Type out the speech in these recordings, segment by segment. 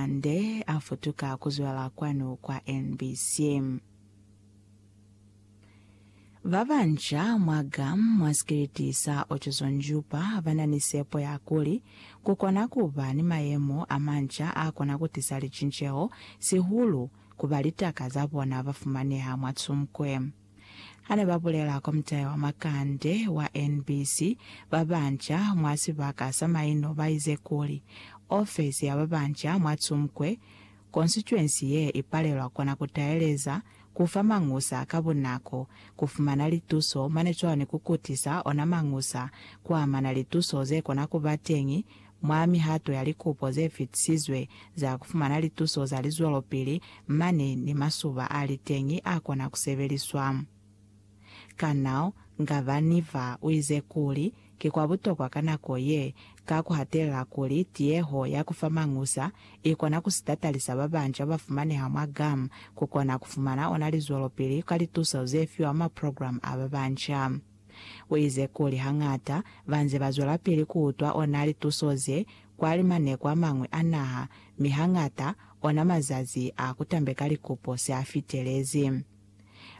Ande a futuka ku zwela kwanu kwa NBC. Ba banca mwa gam mwa sikiliti sa Otjozondjupa ba na ni sepo ya kuli ku kona ku ba ni mayemo a manca a kona ku tisa licinceho, sihulu ku ba litaka za bona ba fumaneha mwa Tsumkwe. Ha ne ba bulela Komitahe wa Makande wa NBC ba banca mwa sibaka sa maino ba ize kuli, Ofesi ya ba banca mwa Tsumkwe konsituensi ye i palelwa kona ku taeleza, ku fa mañusa ka bunako, ku fumana lituso mane cwalo ni ku kutisa ona mañusa ku amana lituso ze kona ku ba teñi Mwa mihato ya likupo ze fitisizwe za ku fumana lituso za lizwelopili, mane ni masuba a li teñi a kona ku sebeliswa. Kanao Ngavaniva u ize kuli, Ki kwa butokwa ka nako ye, ka ku hatelela kuli tiyeho ya ku fa mañusa i kona ku si tatalisa ba banca ba fumaneha mwa GAM ku kona ku fumana ona lizwelopili ka lituso ze fiwa mwa programu a ba banca. Uize kuli hañata banze bazwelapili kuutwa ona lituso ze kwa limaneko amañwi a naha, mi hañata ona mazazi a kutambeka likupo se a fitelezi.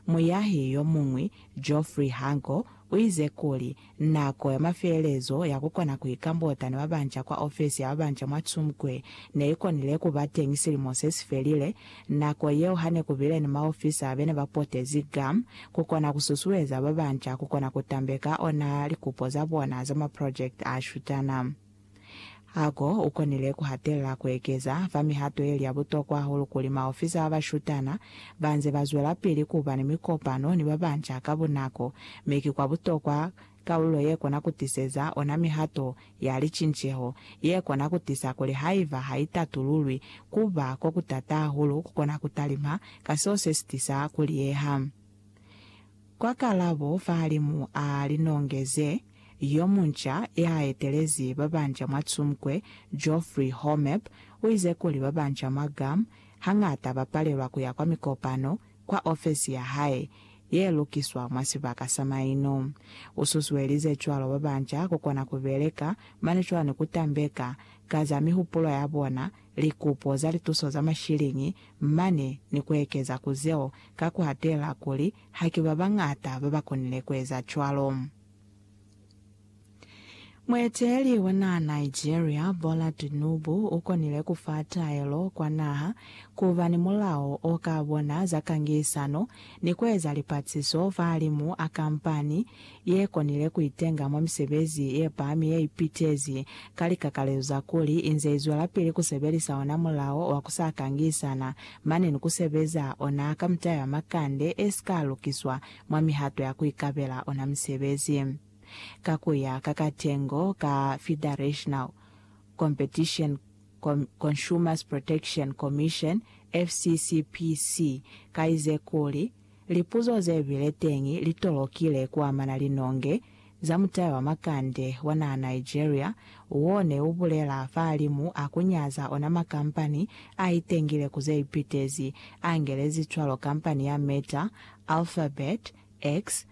Muyahi yomuñwi, Geoffrey Hangle, uize kuli, Nako ya mafelelezo ya kukona kuika botana babanca kwa ofesi ya babanca mwa Tsumkwe neikonile kuba teñi silimo sesifelile, Nako yeo hane kubile ni maofisa bene ba potezi GAM kukona kususueza babanca kukona kutambeka ona likupo zabona za maprojekiti ashutana. Hago ukonile kuhatelela kuekeza fa mihato yeli ya butokwa hahulu kuli maofisa abashutana banze bazwelapili kuba ni mikopano ni babanca ka bunako, mi ki kwa butokwa Kaulo ye kona ku tiseza ona mihato ya licinceho ye kona ku tisa kuli haiba ha i tatululwi, ku ba ko ku tata hahulu ku kona ku talima ka seo se si tisa ku liyeha. Kwa kalabo fahalimu a linongeze yo munca ya etelezi ba banca mwa Tsumkwe, Geoffrey Hormep, u ize kuli ba banca mwa Guam hañata ba palelwa ku ya kwa mikopano, kwa ofesi ya hae ye lukiswa mwa sibaka sa maino. U susuelize cwalo ba banca ku kona ku beleka mane cwalo ni ku tambeka ka za mihupulo ya bona, likupo za lituso za mashiliñi, mane ni ku ekeza ku zeo ka ku hatelela kuli haki ba bañata ba ba konile ku eza cwalo. Mueteleli wa naha Nigeria, Bola Tinubu, u konile ku fa taelo kwa naha ku ba ni mulao o ka bona za kangisano ni ku eza lipatsiso fahalimu a kampani ye konile ku itenga mwa misebezi ye pami ye ipitezi ka likakalezo za kuli i nze i zwelapili ku sebelisa ona mulao wa ku sa kangisana mane ni ku sebeza ona ka mitayo ya makande e si ka lukiswa mwa mihato ya ku ikabela ona misebezi. ka ku ya ka katengo ka Federational Competition Consumers Protection Commission, FCCPC, kaize kuli, Lipuzo ze bile teñi li tolokile ku amana linonge za mutayo wa makande wa naha Nigeria wo ne u bulela fahalimu a ku nyaza ona makampani a itengile ku ze ipitezi, a ngelezi cwalo kampani ya Meta, Alphabet, X,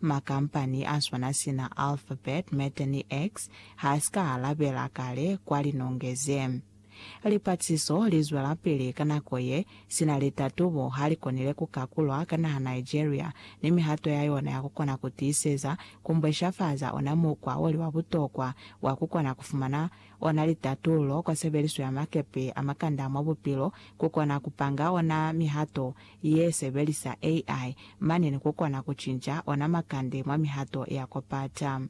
Makampani a swana sina Alphabet, Meta ni X ha si ka alabela kale kwa linonge ze. Lipatsiso li zwelapili ka nako ye, sina litatubo ha li konile ku kakulwa ka naha Nigeria ni mihato ya yona ya ku kona ku tiiseza ku mbweshafaza ona mukwa o li wa butokwa wa ku kona ku fumana ona litatululo kwa sebeliso ya makepe a makanda mwa bupilo ku kona ku panga ona mihato ye sebelisa AI mane ni ku kona ku cinca ona makande mwa mihato ya ku pata.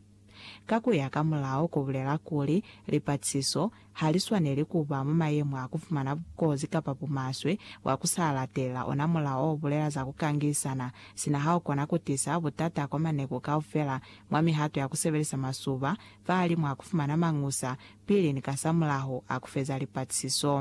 Ka ku ya ka mulao ku bulela kuli, lipatisiso ha li swaneli ku ba mwa mayemo a ku fumana bukozi kapa bumaswe bwa ku sa latelela ona mulao o bulela za ku kangilisana, sina ha u kona ku tisa butata kwa maneku kaufela mwa mihato ya ku sebelisa masuba, fahalimw'a ku fumana mañusa pili ni kasamulaho a ku feza lipatisiso.